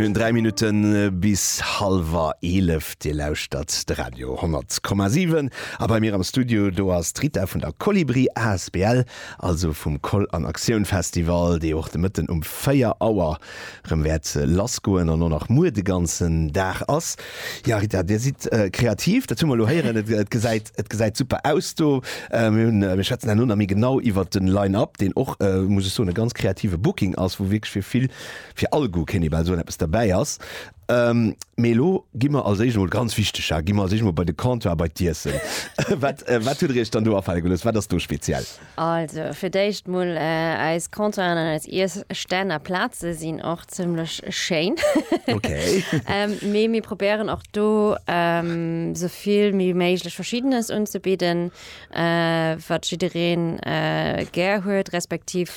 Mir hunn 3 Minutten bis hallwer 11. Dir lauschtert de Radio 10,7 a bei mir am Studio do ass d'Rita vun der Kolibri asbl, also vum Koll an Aktioun Festival, dee och de Mëtten um 4 Auer erëm wäert lassgoen an och nach muer de ganzen Dag ass. Ja Rita, Dir sidd kreativ, dat hu mer elo héieren. Et gesäit et gesäit super aus do. Mir hunn mir schwätzen herno nach méi genau iwwer den Line-up, deen och muss ech soen e ganz kreative Booking ass, wou wierklech fir vill, fir all Goût kéint ee bal soen, eppes derbäi ass. Mee elo gi mer als éischt emol, ganz wichteg, gi mer als éischt emol bei de Comptoir, bei d'Iessen. Wat wat hutt Der Iech dann do afale gelooss? Wat ass do speziell? Also fir d'éischt mol eis Comptoiren an eis Iesstänn a Plaze sinn och zimmlech schéin. Mee mir probéieren och do sou vill wéi méiglech Verschiddenes unzebidden, wat jiddereen gär huet, respektiv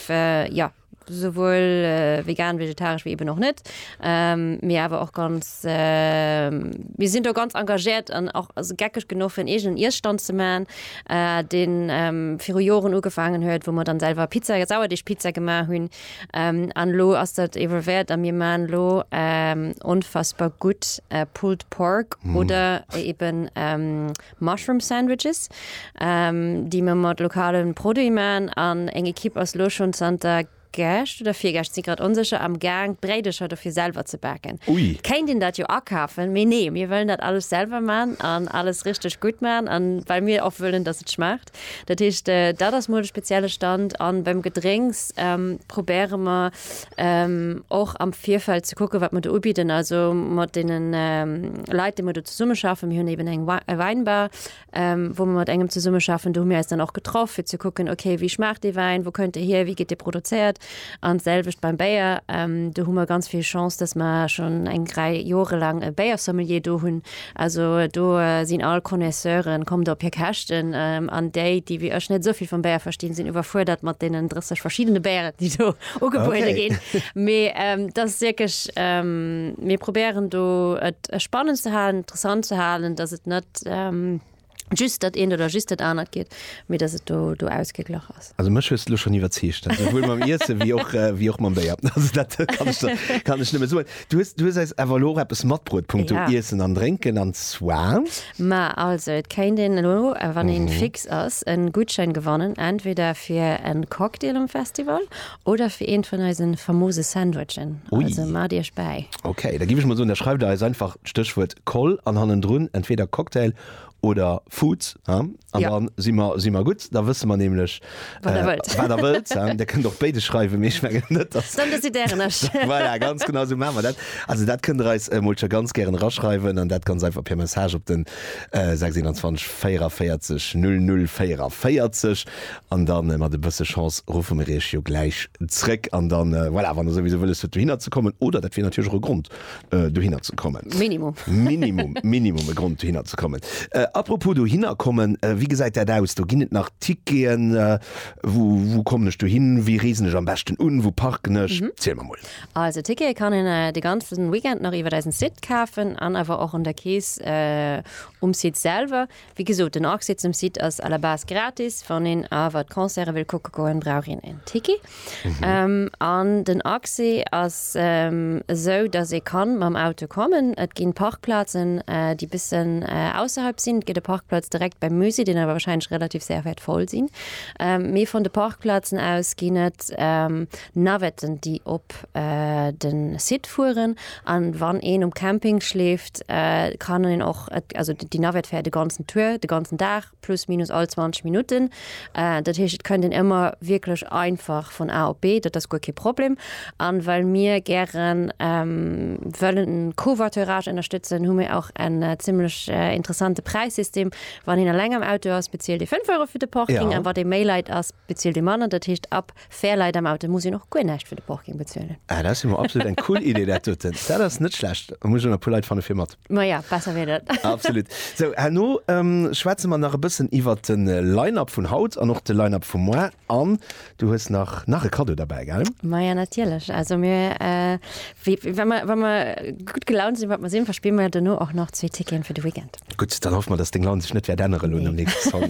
jo. souwuel vegan, vegetaresch wéi eben och net, mee awer och ganz, mir sinn do ganz engagéiert an och also geckeg genuch fir en eegenen Iesstand ze man, deen viru Joren ugefaangen huet, wou mer dann selwer Pizza, Sauerdeegpizza gemaach hunn an elo ass dat evolvéiert a mir man elo onfassbar gutt Pulled Pork oder eben Mushroom Sandwiches, déi mer mat lokale Produite maan, an eng Equipe ass lo schon zanter gescht oder virgescht, si grad onsécher, am gaang d'Bréidecher dofir selwer ze baken. Et kéint een dat jo akafen, mee nee, mir wëllen dat alles selwer maan an alles richteg gutt maan an well mir och wëllen dass et schmaacht. Dat heescht, dat ass mol de spezielle Stand. An beim Gedrénks probéiere mer och am Virfeld ze kucken, wat mer do ubidden. Also mat deenen Leit, déi mer do zesummeschaffen, mir hunn eben eng Wäinbar, wou mer mat engem zesummeschaffen, do hu mir eis dann och getraff, fir ze kucken, okay, wéi schmaacht dee Wäin, wou kënnt dee hier, wéi gëtt dee produzéiert? An d'selwecht beim Béier, do hu mer ganz vill Chance, dass mer schonn eng Rei Jore laang e Béiersommelier do hunn. Also do sinn all Connoisseuren, kommt op hir Käschten. An déi, déi wéi ech net esou vill vum Béier verstinn, sinn iwwerfuerdert mat deenen 30 verschiddene Béieren, déi do ugebuede ginn. Mee dat ass wierklech, mir probéieren do et spannend ze halen, interessant ze halen, dass et net, just dat eent oder just dat anert geet, mee datt et do, do ausgeglach ass. Also mech hues de lo schonn iwwerzeegt, souwuel mam Iesse wéi och, wéi och mam Béier. Also dat kann ech der, kann ech nëmme soen. Du hues, du hues eis awer elo och eppes matbruet punkto Ja. Iessen an Drénken, an zwar. Ma also, et kéint een elo, wann ee fix ass, en Gutschein gewannen, entweder fir en Cocktail um Festival Oder fir eent vun eisen famose Sandwichen. Ui. Also maacht iech bäi. Ok, da giff ech mol soen, da schreift der eis einfach d'Stéchwuert Koll an hannendrun entweder Cocktail oder Foods, he? An Ja. dann si mer, si mer gutt, da wësse mer nämlech, Wat der wëllt. wat der wëllt, he? Der kënnt och béides schreiwen, mee ech mengen net, dass Dann decidéieren ech. Voilà, ganz genau esou maache mer dat. Also dat kënnt der eis emol scho ganz gären eraschreiwen an dat ganz einfach per Message op den 621 44 00 44. An dann mat e bësse Chance ruffe mir iech jo gläich zréck. An dann, voilà, wann der souwisou wëlles huet dohinner ze kommen, oder dat wier natierlech och e Grond dohinner ze kommen. Minimum. Minimum, Minimum e Grond dohinner ze kommen. Apropos dohinner kommen, wéi gesäit dat aus? Do ginn et nach Ticketen? Wou, wou kommen ech dohin? Wéi reesen ech am beschten un? Wou parken ech? Ziel mer mol. Also Tickete kann een de ganzen Weekend nach iwwert eisen Site kafen an awer och un der Kees um Site selwer. Wéi gesot, den Accès zum Site ass à la base gratis. Wann een awer d'Concerte wëll kucke goen, brauch een en Ticket. An den Accès ass esou, datt ee ka mam Auto kommen. Et ginn Parkplazen, déi bëssen ausserhalb sinn. Et gëtt e Parkplatz direkt beim Musée, deen awer warscheinlech relativ séier wäert voll sinn. Mee vun de Parkplazen aus ginn et Navetten déi op den Site fueren an wann een um Camping schleeft kann een och also déi Navette fäert de ganzen Tour, de ganzen Dag plus minus all 20 Minutten. Dat heescht et kënnt een ëmmer wierklech einfach vun A op B, dat ass guer kee Problem. An well mir gären wëllen den Covoiturage ënnerstëtzen hu mir och en zimlech interessante Präissystem, wann een eleng am Auto ass bezilt ee 5 Euro fir de Parking an wann ee méi Leit ass bezilt ee manner, dat heescht ab Fair Leit am Auto muss een och guer näischt fir de Porking bezuelen. Ah, dat ass jo mol absolut eng cool Idee dat doten. Dat ass net schlecht. Muss ech och nach e puer Leit fanne fir mat. Ma ja, besser wier dat. Absolut. Sou, herno schwätze mer nach e bëssen iwwert de Line-Up vun haut an och de Line-Up vu moar. An du hues nach nach e Kaddo derbäi, gell? Ma ja, natierlech. Also mir, wa mer, wa mer gutt gelaunt sinn, wat mer sinn, verspille mer duerno och nach zwee Ticketen fir de Weekend. Gutt, dann hoffe mer, dass deng Laun sech net wäert ännere lo nom nächste Song.